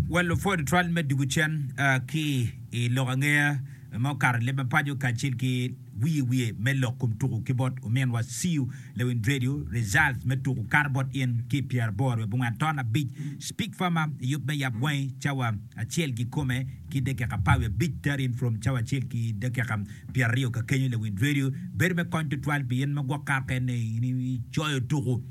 Wa lupwod twal me dwogo cen ki i lok angeya ma okato i leb mapaco kacel ki wiye wiye me lok kom tuku ki bot ominwa Siu Lewin Dredio, Results me tuku kato bot in ki pyera boro wiye abongwen aton abic, Speak Farmer i yub me yab wangi cawa acel kikome ki dakika apar wiye abic, Tar in from cawa acel ki dakika pyera aryo kakenyo Lewin Dredio bedo me kony tutwal pi in ma gwok kato kene in icoyo tuku.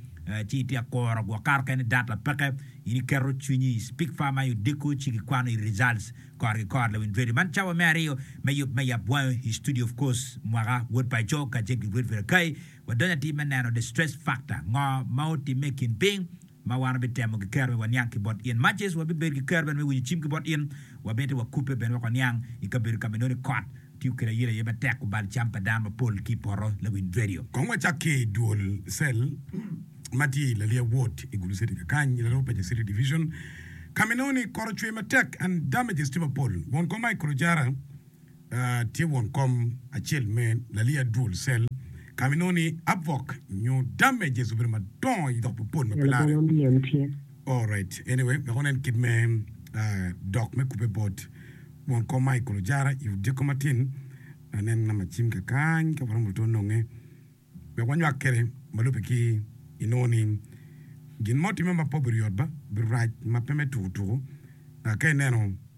ci ityek kuro gwok kato keken i data peke in iketo cwinyi i speak far ma i odiko ci gikwano i results kor ki kor lawiny radio man cawa me aryo me yub me yap wango i studio of course mwaka wod paco kacel ki Fred Virakai wadonyo atir me neno the stress factor ngo ma otimme i kin piny ma wan wabitemo ki kero me waniang ki bot in much as wabibedo ki kero bene me winyo cim ki bot in wabite wakubbe bene wek waniang i kabedo kama inongo ni kot Tiyo kede ayela aye matek kubal cam pa dano mapol ki i poto lawiny redio. Kong wacak ki i dwol cell ma tye i Lalia Ward i Gulu City kakany i Laroo Paja City Division ka ma inongo ni kor ocwe matek and damages tye mapol. Won kom Michael Ojara tye won kom acel me Lalia Dwol Cell ka ma inongo ni abwok nyo damages obedo madongo i dok mapol ma pe larre. Alright, anyway, wek wanen kit me ah, dok me kubbe bot won kom Michael Ojara i odyeko matin. Anen namba cim ka kany ka waromo to nonge wek wanywak kwede ma lubbe ki inongo ni gin mo timme ma pe obiryot ba, birac ma pe me tuku tuku ah, ka ineno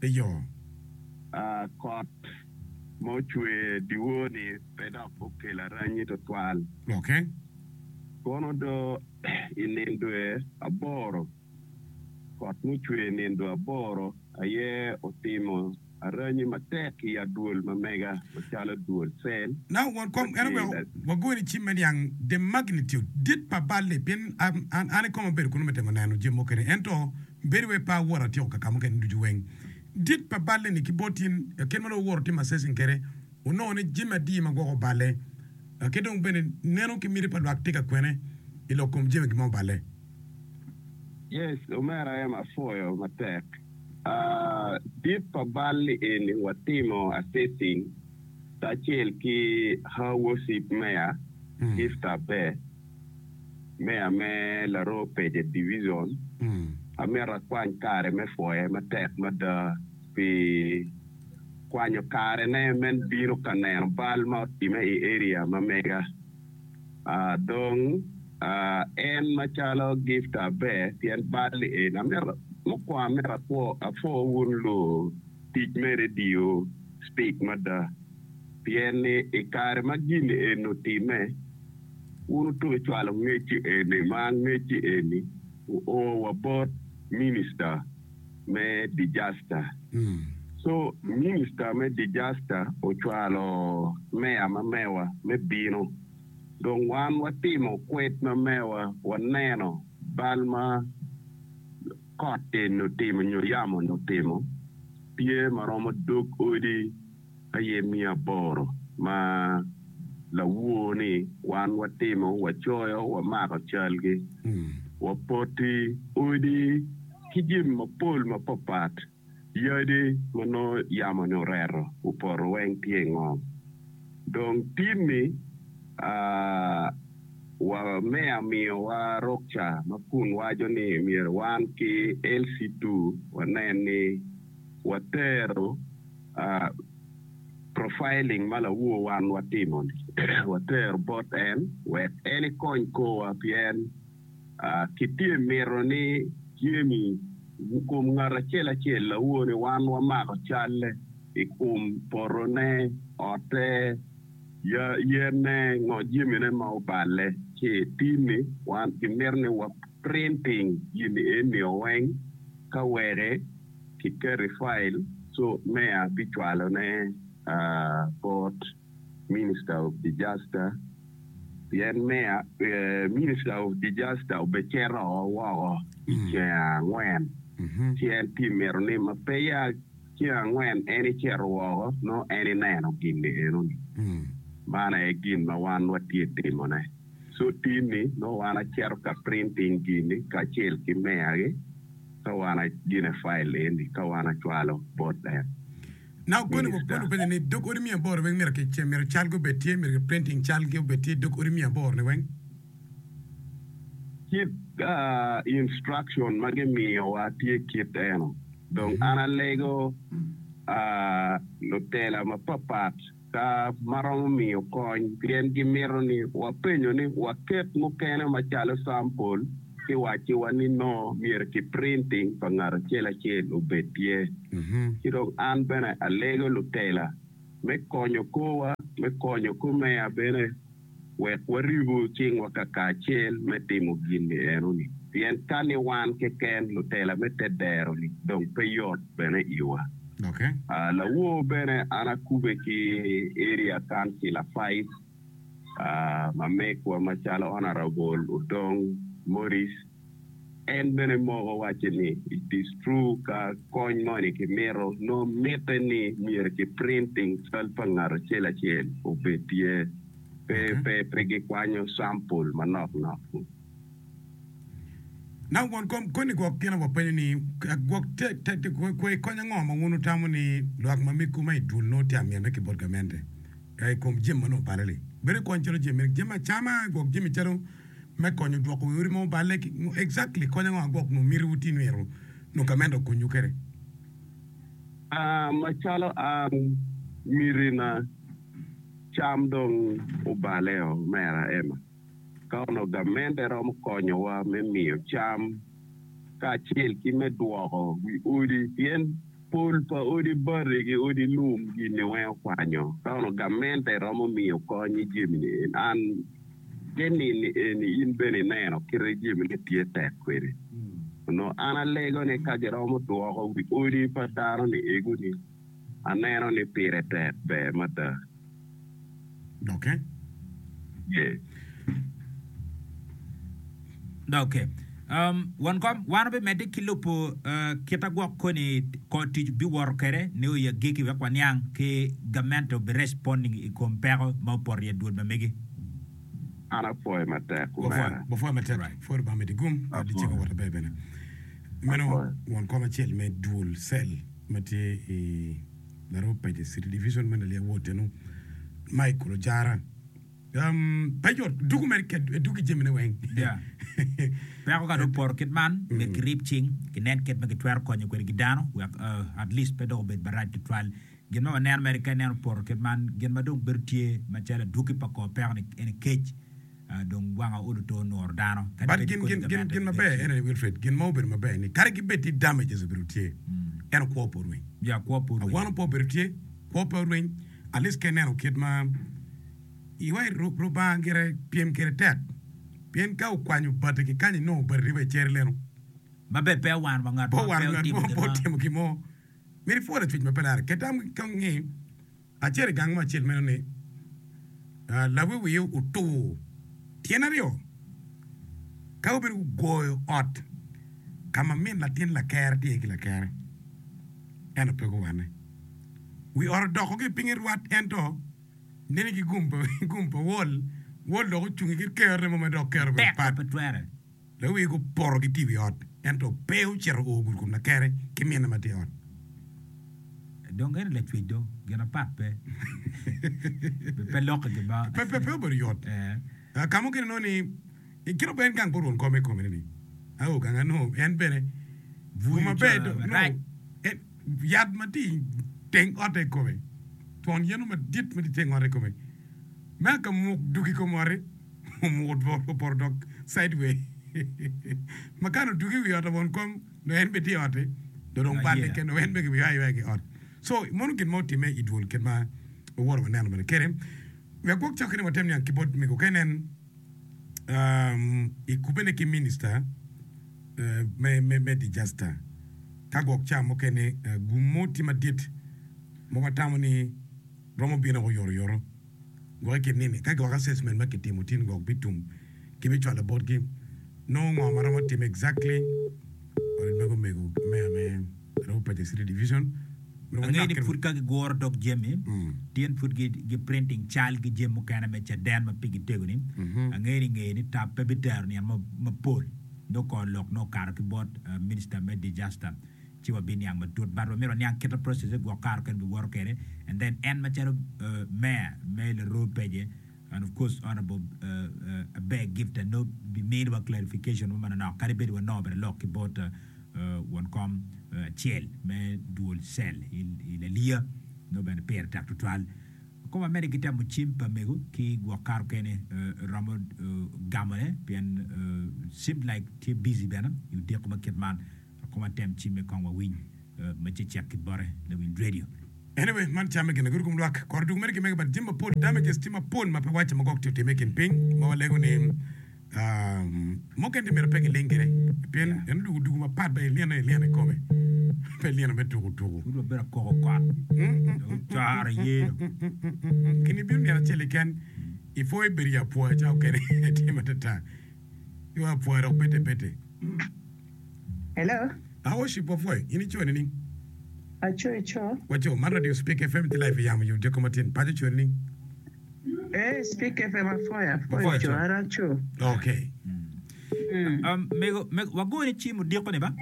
pe yom. Kot ma ocwer dyewor-ni pe dok okelo aranyi twatwal. Lokke. Kono do i nindue aboro, kot mucwer nindue aboro aye otimo aranyi matek i adwol ma mega macalo dwol cell me pi. Wagoyo ni cim me niang the magnitude dit pa bal-li pien an koma abedo kunu me temo neno jami mukene ento. Bedo wai pa awoto atyeko ka ka mukene ducu weng dit pa balle ni ki bot in laken ma dong wuwoto timo assessing kede wunongo ni jami adi ma gwoko balle ki dong bene neno ki miti pa lwak tye ka kwene i lok kom jami gi ma oballe. Yes omera em apwoyo matek aah dit pa balli eni watimo assessing kacel ki Hawosip Meya Gift Abe. Meya me Laroo Page Division, amito akwany kare me pwoye matek mada pi kwanyo karene me bino ka neno bal ma otimme i area ma mega. Dong en macalo gift aber pien bal-li eni, amito mukwongo amito apwo wun lutic me redio Speak mada pien ni i kare ma gin eni otimme, Wun wutuno cwalo ngecci eni ma ngecci eni oo wa bot Minister me Disaster. Co Minister me Disaster ocwalo Mayor ma Mewa me bino. Dong wan watimo kwed ma Mewa waneno bal ma kot eni otimo nyo yamo ni otimo, tye ma romo dog odi aye miyo aboro ma lawor ni wan watimo, wacoyo, wamako calgi, wapoti odi ki jami mapol mapatpat, yadi ma nongo yamoni oreto i poto weng tye i ngom. Dong timmi wa me amiyowa ruksa ma kun waco ni myero wan ki LC2 wanen ni. watero profiling ma lawor wan watimo-ni watero bot en wek en ekony korwa pien kitye mito ni jami i kom ngat acel acel lawor ni wan wamako calle i kom potone, ote, yene, ngo jamine ma oballe ci i tim-mi wan kimito ni wa printing jami eni-o weng. Ka were, kiketo i file so meya bi cwalo ne bot minister of disaster pien meya, minister of disaster obe cito woko i ceng angwen ci en tye mito ni ma peya. Ceng angwen en icito woko, nongo en ineno gin-ni eno-ni. Man aye gin ma wan watye timone. Cutin-ni, nongo wan acito ka printing gin-ni kacel ki meya-gi, ka wan agine file eni, ka wan acwalo bot en. Nongo koni wa pol openyo ni, Dog odi miya aboro weng myero ki, myero calgi obed tye, myero ki printing calgi obed tye dog odi miya aboro-ni weng? Kit instruction ma gimiyowa tye kit eno. Dong an alego lutela mapatpat ka ma romo miyo kony pien gimito ni wapenyo ni waket mukene macalo sampol ki wacciwa ni nongo myero ki printing pa ngat acel acel obed tye. Ci dong an bene alego lutela me konyo korwa, me konyo komeya bene. wek waribu cingwa kakacel me timo gin ni enoni, pien ka ni wan keken, lutela me te dero-ni dong pe yot bene iwa. Lawor bene an akube ki Area Council Affairs, mamegwa macalo Honourable Odong Morris, En bene moko wacce ni, it is true ka kony moni kimito nongo mitte ni myero ki printing cal pa ngat acel acel obed tye pe pe pe gikwanyo sample manok nok ni. Now won kom koni gwok gin aye wapenyo ni gwok te te te kwai kony ango ma wun wutamo ni lwak ma miggu ma idul nongo tye amyene ki bot gamente ikom jami manongo obale li bedo ikony calo jami jami acama gwok jami calo me konyo dwoko wi odi ma oballe ki ngo exactly kony ango agwok nwo miti wuti nwito nwo gament okonyu kede? Aa macalo an miti na cam dong obale o mera Emma ka onongo gamente romo konyo wa me miyo cam ka acel ki me dwoko wi odi pien pol pa odi bati ki odi lum gini weng okwanyo ka onongo gamente romo miyo kony ijemini en an Ki nini eni in bene ineno kite jemine tye tek kwede. Onongo an alego ni ka giromo dwoko wi odi pa dano ni egu ni, aneno ni pire tek ber mada. Doke? Ye. Doki, won kom, wan wubimedde ki lubo kita gwok koni kor tic wubiwoto kwede nio i agikki wek waniang ki gamente obi responding i kom peko ma opoto i adwol ma megi. An apwoye matek omera. Wapwoye matek, pwod Lubanga medi gum wek dicego wot aber bene. Meno won kom acel me dwol cell ma tye i Laroo Pages City Division me Nalia Ward ennu Michael Ojara. Um, paco duku mere kit duku i jamine weng. Yeah. Peko ka dong opoto kit man, myero kirib cing, kinen kit ma kitwero konyo kwede ki dano, wek uh, at least pe dok obed marac tutwal. Gin ma waneno mere ka ineno opoto kit man, gin ma dong bedo tye macalo aduki pa kor peko-ni ene kec. Uh, dong wanga olo to onuro dano. Kadi But bed gin, ikodi gin, gin, gamente gin maber leadership. ene ni Wilfred, gin ma obedo maber ni kadi ki bed ni damages obedo tye, eno kwo pe orweny. Yeah, kwo pe A, orweny. wano pe obedo tye, kwo pe orweny. Alice ka ineno kit ma iwa i Lubanga gire pyem kwede tek, pien ka wukwanyo bati ki kany inongo bati tye wa i cer leno. Maber, pe wawano wa ngat mo pe otimo gin mo. Myero ipwol acuc ma pe lare. Ket tam ka wungi acel i gang mo acel meno ni, Lawiwio otur tyen aryo ka gubedo gugoyo ot ka ma min latin lakerre tye iye ki lakerre, ento pe guwanne. Wi ot odoko ki pinye rwat ento nene ki gum gum pa Wol. Wol dok ocungi kit kero remo ma dok kero bene pat. Dok wiye gupoto gitye i wi ot ento pe ocito oo gurkum lakere ki minne ma tye i ot. Dong en i lacwec do, gin apat pe, pe lokke gin mo. Pe obedo yot. Ka mukene nongo ni, I kite ober gang pe orun kome kome ni ni a o gang a nongo en bene bur maber do nongo en yat ma tye iteng otte kome twon yen mo madit ma tye iteng otte kome me a ka muk duk i kom otti omuko twon opoto dok side way ma kare oduk i wi ot labon kom nongo en bene tye i otti do dong balle kene nongo en bene ki ywayo aywaya ki ot so mono gin mo otime idwol kit ma wawoto waneno bene kede. We agwok cokke ni watem niang ki bot mego ka inen i kubene ki Minista me Dijasta ka gwok ca mukene gum mo tye madit ma watamo ni romo bino woko yoroyoro gwok i kin nini. Ka gwok assessment ma kitimo tin gwok bitum ki bicwalo botgi nongo ngo ma romo time exactly. Ot mego mego meya me. Angeyo ni pud ka giguro dog jami, tyen pud giprinting cal ki jami mukene me caden ma pigi tego-ni, angeyo ni ngeye ni tap pe bitero niang mapol. Nongo kor lok nongo okato ki bot Minister me Disaster ci wabiniang matut but wamito waniang kit ma process-ze gwok kato kene biwoto kwede and then en macalo Mayor me Laroo Peje, And of course Honourable Abeg gift Anup bimini wa clarification mo manonok kadi bed wanongo bene lok ki bot won kom acel me dual cell i Laliya nongo bene pire tek tutwal. Kong wamedde ki temo cim pa mego ki gwok kare okene romo gamone pien seemed like tye busy bene i odiko ma kit man. I koma tem cimme kong wa winy me cecek ki bote lawind radio. Anyway man camme gin lagudo kom lwak kore dwogo mere ki mege but jami mapol damages tye mapol ma pe wacce ma gwok tye otime ikin piny ma walego ni mukene tye myero pe giling gire pien en odugo dugo mapat dok ilyene aye ilyene ikome pe ilyene me tuku tuku. Pud wabedo akoko kot dong ocoro iye dong. Kine ibino nino acel keken ipwo ibedo ya pwo acawa okene tye matata. Yo apwoya dok pete pete. Hello. Ah worship wapwoyo. In i co nining? Aco i co. Waco, man radio Spik FM tye live i yamo yo dyekko matin. Paco co nining? Eh, Spik FM apwoyo, apwoyo co, an aco. Okay. Um, mego, mego, wago ni cim odiko ni ba?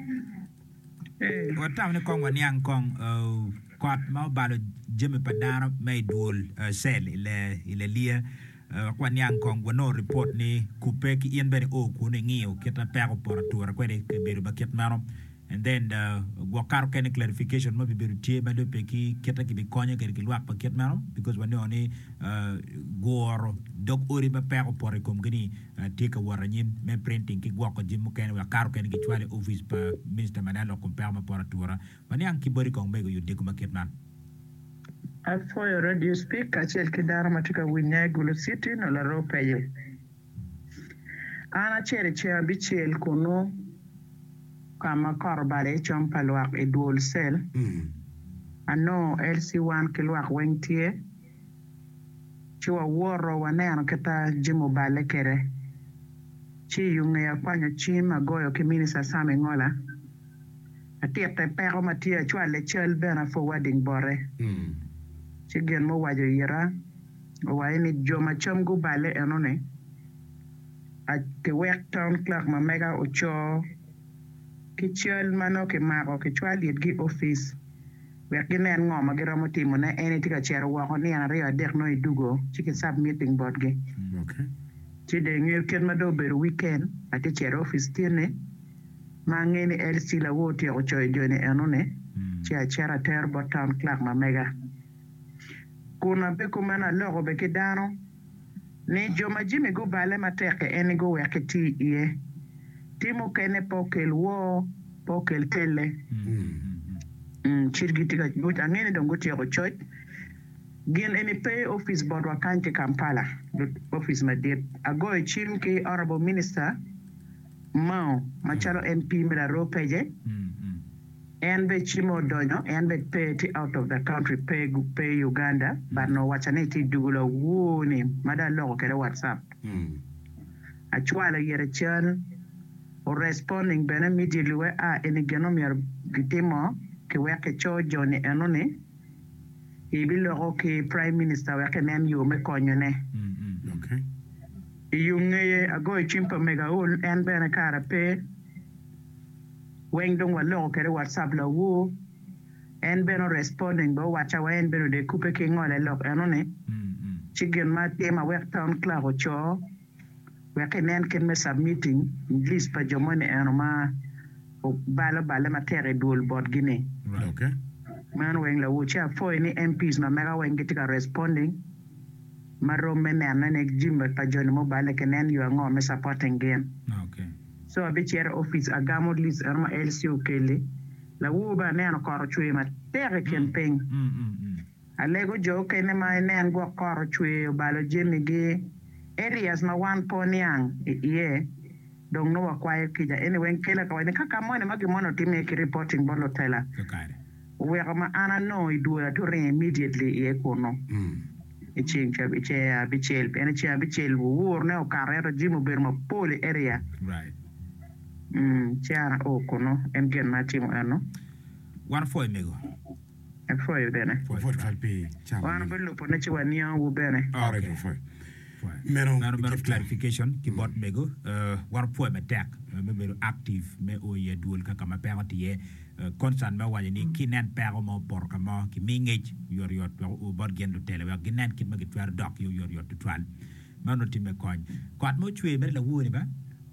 Eh. Watamo ni kong waniang kong uh, kot ma obalo jami pa dano me i dwol uh, cell i le, i le liya. Wek waniang kong, wanongo ripot ni kubbe ki in bene oo kun ingiyo kit ma peko poto ature kwede i kabedo ma kit meno. And then gwok kato kene clarification ma bibedo tye ma lubbe ki kit ma kibikonyo kwede ki lwak ma kit meno because waningo ni guro dog odi ma peko opoto i komgi ni tye ka wot anyim me printing ki gwoko jami mukene wek kato kene gicwalo i opic pa Minister Maneno kom peko me poto ature. Waniang ki boti kong mego i odiko ma kit man. Apwoyo radio speak kacel ki dano ma tye ka winya i Gulu city nyo larop aye. An acel i ceng abicel kunu ka ma kot obale i com pa lwak i dwol cell. Anongo LC1 ki lwak weng tye. ci wawoto waneno kita jami oballe kede. Ci iyo ngeye akwanyo cim agoyo ki Minister Sam Engola atikke peko ma tye acwalle cal bene a forwarding bote. Ci gin ma owaco oyita owaco ni jo ma cam guballe enoni a kiwek Town Clerk ma mega ocoo ki cal ma nongo kimako kicwalo itgi office. wek ginen ngo ma giromo timone. En itye ka cito woko nino aryo adek nongo idugo ci ki submitting botgi. Ci dong ingeyo kit ma dong obedo weekend atye cito office tyene ma angeyo ni LC Lawo otyeko coyo joni enoni ci acito atero bot town clerk ma mega kun abe kumeno aloko bene ki dano. ni jo ma jami gubale matek-ki en ni guwek iti iye. Tim mukene pe okel woo, pe okel telle. Cit giti ka coc. Angeyo ni dong gutyeko coc. Gin eni pe opic botwa kany ki Kampala, opic madit. Agoyo cim ki Honourable Minister Mao macalo MP me Laroo Pece. En be cimo odonyo en be pe tye out of the country pe pe Uganda but nongo waca ni tye jugo lawoo ni ma dong aloko kede WhatsApp acwalo iyete cal o responding bene immediately we a eni gin omyero gitimo ki wek ki co Jonny eno ni i bi loko ki prime minister wek ki nen yoo me konyo ne iyungeye agoyo cwiny pa mega ul en bene kara pe weng dong waloko kede WhatsApp lawoo en bene o responding bene owacca wa en bene odee kube ki ngole lok eno ni ci gin ma atim awek town clerk ocoo wek ki nen kit me submitting list pa jo moni eno ma obalo balle matek i dwol bot gi ni meno weng lawoo ci apwoyo ni MPs ma mega weng gitye ka responding ma rom me nene ni jimi pa joni ma oballe ki nen yo ango me supporting gin. Co abicito i opic agamo lic eno ma LC okeli. Lawor bene aneno kot ocwer matek i kin piny. Alego jo okene ma inen gwok kot ocwer obalo jemi gi. Areas ma wan po niang i iye dong nongo wakwayo kica. Anyway, kela ka wacci ni ka ka moni ma gin moni otimme ki reporting bot lutela. oweko ma an anongo i dwoyo ature immediately iye kunu i ceng ceng abicel pien i ceng abicel wur ne okato ento jimi obedo mapol i area ci an ao kunu en gin ma atimo eno. Wan opwoyo mego. Apwoyo bene. Wan obilubo ne ci waniango wu bene. Meno Ngat omedde gitye. clarification ki bot mego wato pwoyo matek me bedo active me o i adwol kaka ma peko tye concern me waco ni ki nen peko mo opoto ka mo ki mi ngec oyot yot wek o bot gin lutele wek gi nen kit ma ki twero dok ki oyot yot tutwal meno ti me kony kot mo cwer mere lawor ni ba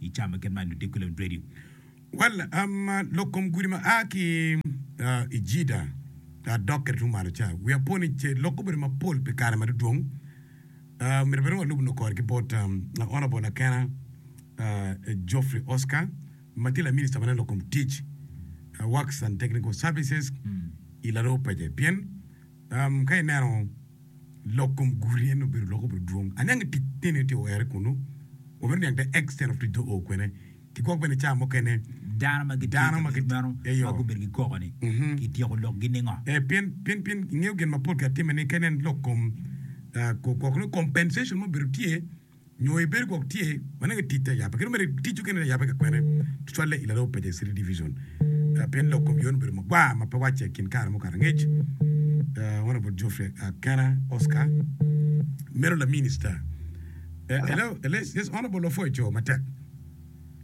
i caa ma kit man ludiko lem dwedi. Well, um, lok kom gudi ma a ki uh, i Jida uh, dok kede tung malo ca, wia po ni ce lok obedo mapol pi kare madudwong. Uh, myero bene walub no kore ki bot um, Honorable Akena uh, Geoffrey Oscar, ma tye laminista ma nen lok kom tic, uh, Works and Technical Services, i laroo pece. Pien, um, ka ineno Lok kom guti eni obedo lok obedo dwong. Aniang i tic nene itye were kunu. Wamito niang the extent of tic do oo kwene. Kigwok bene caa mukene Dano ma gitye dano i ma kabedo meno gitye eyo. ma gubedo gikoko ni Mhm. kityeko lokgi ningo? Eh, pien pien pien ingeyo gin mapol katimme ni ka inen lok kom ah, ko- ko- compensation ma obedo tye nyo ibedo gwok tye ma nongo itic te yabbe kadi mere iticcu kene te yabbe ka kwene tutwalle i Laroo Paja City Division pien lok kom yone obedo magwar ma pe wacce i kin kare mukato angec. Honourable Geoffrey Akena Oscar meno la Minister. Hello, yes Honourable Ofwoy Coo matek.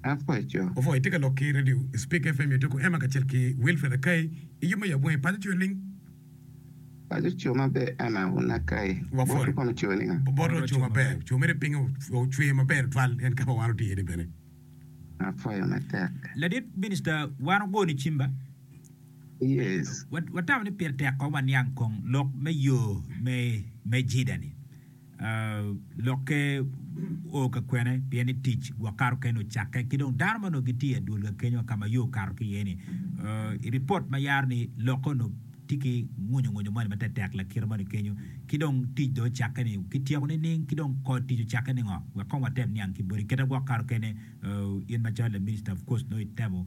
Afwoy Coo. Ofwoy itye ka lok ki Radio Speak FM Etoko Emma kacel ki Wilfred Akai i yub me yabwenge paco coyo ling. Obote oco maber oco mere pinge ocwe maber tutwal en ka ma wan watye iye ni bene. Ladit Minista wan ogo ni cimba. Watamo ni pire tek kong waniang kong lok me yo me Jida ni. Lokke o ka kwene, pien ni tic gwok kato kene ocakke, ki dong dano ma onongo gitye i adwolga kenyo ka ma yo okato ki iye-ni. I ripot ma yaro ni lokke onongo tye ki ngunyungunyu moni ma tetek lakite moni kenyo, ki dong tic dong ocakke ni kityeko nining, ki dong kor tic ocakke ni ngo? Wek kong watep niang ki boti. Kite gwok kato kene, in macalo laminista of course nongo itemo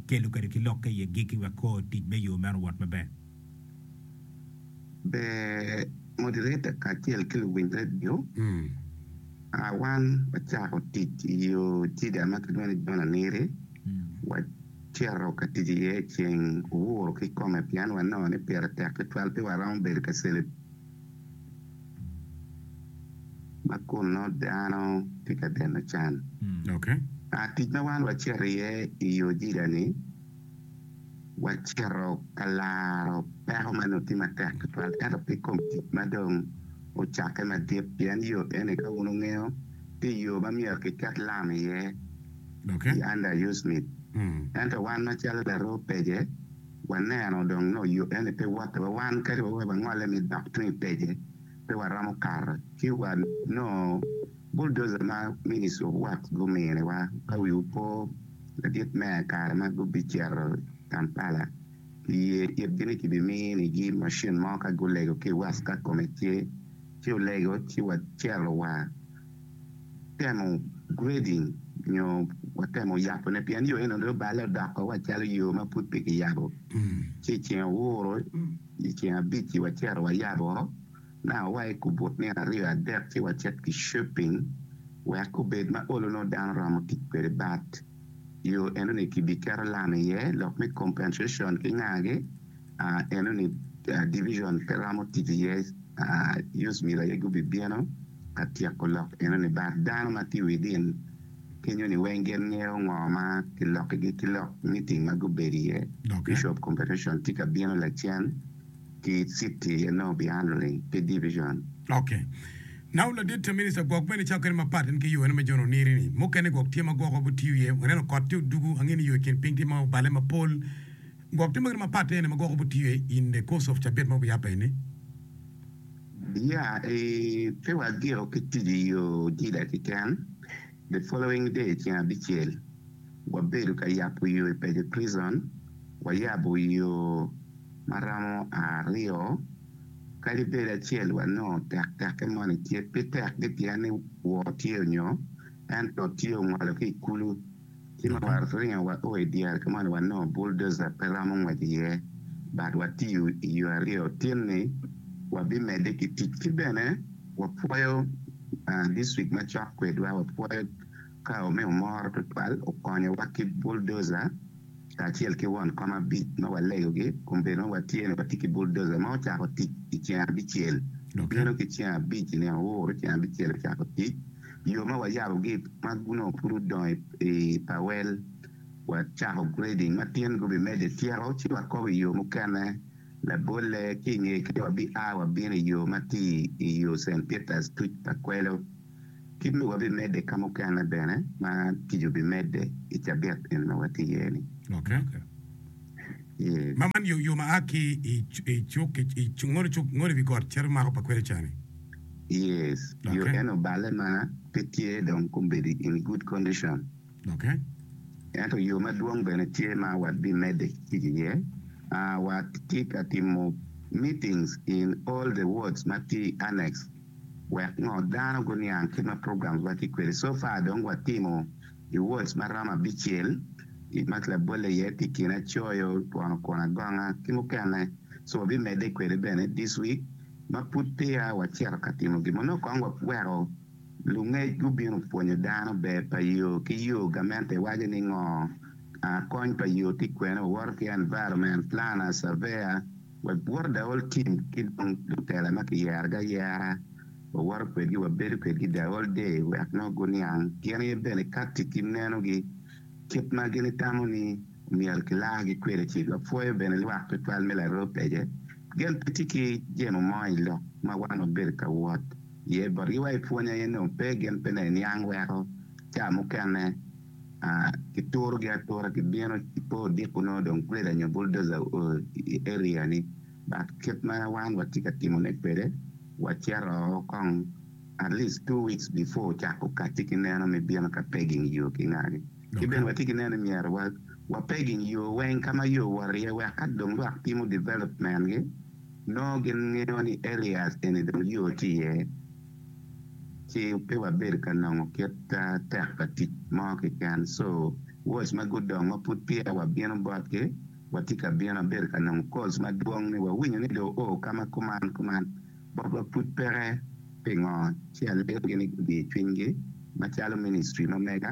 kelo kede ki lokke iye giki wek kor tic me yo meno owot maber. ber moderator kacel ki luwiny redio. Ah wan wacako tic i yo Jiga ma kilwongo ni John Aniri. Wacito ka tic iye ceng owuro kikome pien wanongo ni pire tek tutwal pe waromo bedo ka cele ma kun nongo dano tye ka deno can. Ah tic ma wan wacito iye i yo Jiga ni. wacito ka laro peko ma onongo tye matek tutwal ento pe kom tic ma dong ocakke madit, pien yo eni ka wun wungeyo, tye yo ma myero kiket lam iye i Under U. Smith. Ento wan macalo laroo pece, waneno dong nongo yo eni pe woto wa, wan kadi wa wek wangole me dok tung i pece, pe waromo kato ci wa nongo bulldozer ma Ministry of Works guminiwa. Ka wiwu po. Ladit me kare ma gubicito Kampala kiye itgi ni kibiminigi macin mo ka gulego ki i west ka kome tye, ci olego ci wacito wa temo grading nyo watemo yabone pien yo eno dong oballe odoko wa calo yo ma pud pe kiyabo. Ci iceng ouro iceng abic-ci wacito wayabo. Now wa i kubut nino aryo adek ci wacit ki shopping wek obed ma olo nongo dano romo tic kwede but yo eno ni ki bi keto lam iye lok me compensation ki nga gi ahh eno ni division pe romo tic iye ahh us myero aye gubi bino ka tyeko lok eno ni but dano ma tye within kenyo ni weng gin ngeyo ngo ma ki loki gi ki lok meeting ma gubedo iye bishop compensation tye ka bino lacen. ki citi enongo pi an luling ki division. Ok. Now ladit ta minister gwok bene icako kene mapat en ki yoo ene me John Oniri ni mukene gwok tye ma gwok wabo tiyo iye waneno kot tye odugu ange ni yoo ikin piny tye ma obale mapol gwok tye ma kit mapat aye ene ma gwok wabo tiyo iye in the course of cabit ma wabo yabo aye ni. Yeah eeh pe wagiko ki tic iyoo ojila kiken the following day ceng abicel wabedo ka yabo yoo ipeco prison wayabo yoo ma romo aryo kadi bed acel wa nongo tek tekke moni tye pe tek gi pien ni wor tye onyo ento tye ongolo ki ikulu ci ma wa ringo wa o idyere ka moni wa nongo bulldozer pe romo ngwec iye but wa tiyo iyo aryo tin ni wa bi mede ki tic ki bene wa pwoyo district macok kwedwa wa pwoyo Kawo me omoro tutwal okonyowa ki buldoza kacel ki won kom abic ma walegogi kun bedo ma watye ni watye ki buldoza ma ocako tic i ceng abicel bino ki ceng abic i nino uru ceng abicel ocako tic yo ma wayabogi ma onongo pud odongo i pawel wacako grading ma tin gubimedde tyeko ci wakobo i yo mukene labolle ki i ngeye kenyo wabi a wabino i yo ma tye i yo Cent Peters tuc pa kwelo. Kit ma wabimedde ka mukene bene ma tic obimedde i cabit eni ma watye iye ni. Oke. Ma man yo ma a ki i cuk ki i cuk ngolo cuk ngolo i wi got cito mako pa kwene ca ni. Yes, yo Oke. eno oballe ma pe tye dong kombedo in good condition. Oke. Ento yo madwong bene tye ma wabimedde tic iye. A, watye ka timo meetings in all the wards ma tye i annex. Wek ngo dano guniang kema programs wa tye kwede so far dong wa timo I wards ma romo abicel I ma labolle iye tye kina coyo twono kwon agonga ki mukene so wa bi mede kwede bene this week ma pud peya wa cito ka timo gin mo nongo kong wa weko lungec gubino pwonyo dano ber pa yo ki yo gamente waco ni ngo kony pa yo tye kwene wa woto ki environment planner surveyor wek bwot Daol tim ki dong lutela ma kiyeragi ayera, wawoto kwedgi wabedo kwedgi i Daol Day wek nongo guniang gin aye bene katti ki nenogi kit ma gin itamo ni myero kilargi kwede ci wapwoyo bene lwak tutwal me laroo pece gen pe tye ki jemo mo i lok ma wan wabedo ka wot iye botgi wa ipwony aye nongo pe gin pe neniang weko ca mukene kiturogi atura gibino pe odiko nongo dong grader nyo bulldozer o i area ni but kit ma wan watye ka timone kwede wacito o kong at least two weeks before ocako kati ki neno me bino ka pegging yo ki ngagi ki bene watye ki neno ni myero wa wa pegging yo weng ka ma yo wot iye wek ka dong lwak timo development gi nongo gin ngeyo ni areas eni dong yo tye iye. ci pe wabedo ka nongo kit tek pa tic mo keken. So watch ma gudongo pud peya wabino botgi, watye ka bino abedo ka nongo calls madwong ni wawinyo ni do o ka ma kuman kuman. Botwa pud peke pingo ci aleyogi ni gudiyo cwinygi macalo ministry ma mega.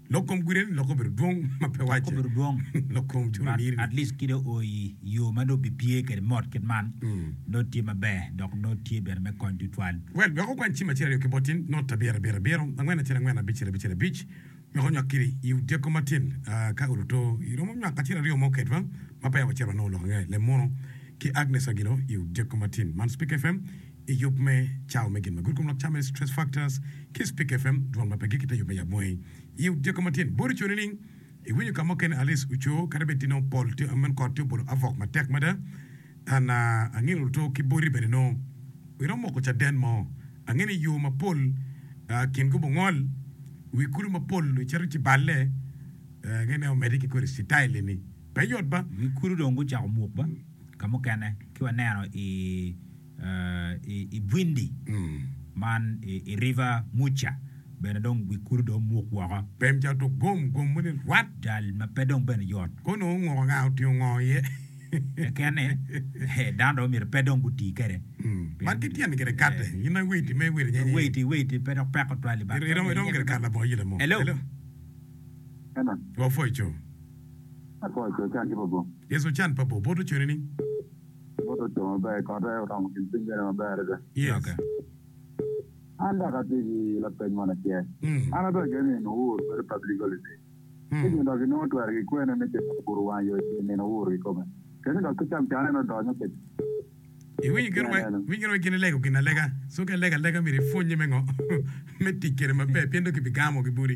Lok kom gudo en lokke obedo dwong ma pe wacce. Obedo dwong. Lok kom curo niri ni. At least ki dong oo i yoo ma dong bipye kede mot kit man nongo tye maber dok nongo tye bene me kony twatwal. Well, wek okwan cim acel aryo ki botin, not ta abiro abiro abiro, angwen acel angwen, abicel abicel abic, wek onywak kiri i odyeko matin. Ah, ka oruto, iromo nywak acel aryo mo kedwa ma peya wacito wanongo lok ange, Lem Mono ki Agnes Agilo i odyeko matin. Man Speaker FM. i yub me cawa me gin ma gudo kom lok cawa-ni, Stress Factors, ki i Spik FM, dwol ma pe gik i te yub me yab moni. I odyego ma tye ni, bot ocoo nining? Iwinyo ka mukene Alice ocoo kadi bed ti nongo pol ti amen kot ti obolo avok matek mada? An a, angino luto ki boti bene nongo iromo moko caden mo. Angino i yo mapol a, kingi obungol, wi kulu mapol icito ci balle, a, angino en omedde ki kodi citayil eni. Pe yot ba? Wi kulu dong gucako muk ba? Ka mukene, ki waneno i. i Bwindi man i River Muca bene dong wi kulu dong omuk woko. Pem ca tuk gom, gom moni rwat. Jal ma pe dong bene yot. Kono onguko nga, otingo ngo iye. Keken ni, dano dong myero pe dong guti kede. Man ki tyen gire kate. In ma iwait ime iwait nyenye. Iwait, iwait, pe dok peko tutwal i bak. Iromo iromo gire kare labongo yila mo. Hello. Hello. Hello. Wa foco. Afoco, ocan ki pa boo. Yes, ocan pa boo. Bot oconi ni. Bot oco maber i kote oromo gin piny bene maber adada. Yes. An dok atye ki lapeny moni acel. An ato ageno ni nino ur bedo public holiday. Ci gin dok inongo twero gikwene me cito ka puro wang yo i nino ur kikome. Kene dok ki cam cane ni odonyo kwede. Iwinyo gin wai, iwinyo gin wai gin ilego gin alega. So ka ilego alega myero ipwonye me ngo me tic kwede maber pien dong kibigamo ki budi.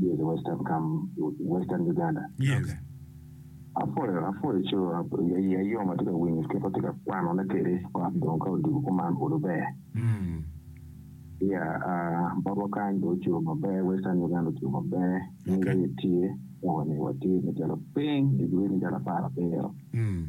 Yes, i western kam, western Uganda. Yes. Okay. Apwoyo, apwoyo co, ap- ya- ya yom atye ka winyo kit watye ka kwanone kwede got dong ka odiko kuman kulu ber. Mm. Ya, ah, botwa kany dong oco maber, western Uganda oco maber, ni Okay. rit tye, kawani watye macalo piny, degree macalo apar abiro. Mm.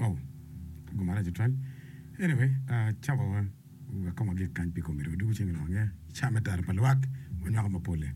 Oh, ago marac tutwal. Anyway, ah, cako wa, wek kong wagik kany pi komi dong. Dwogo cingi lok ange. I cawa me tero pa lwak, wanywako mapolle.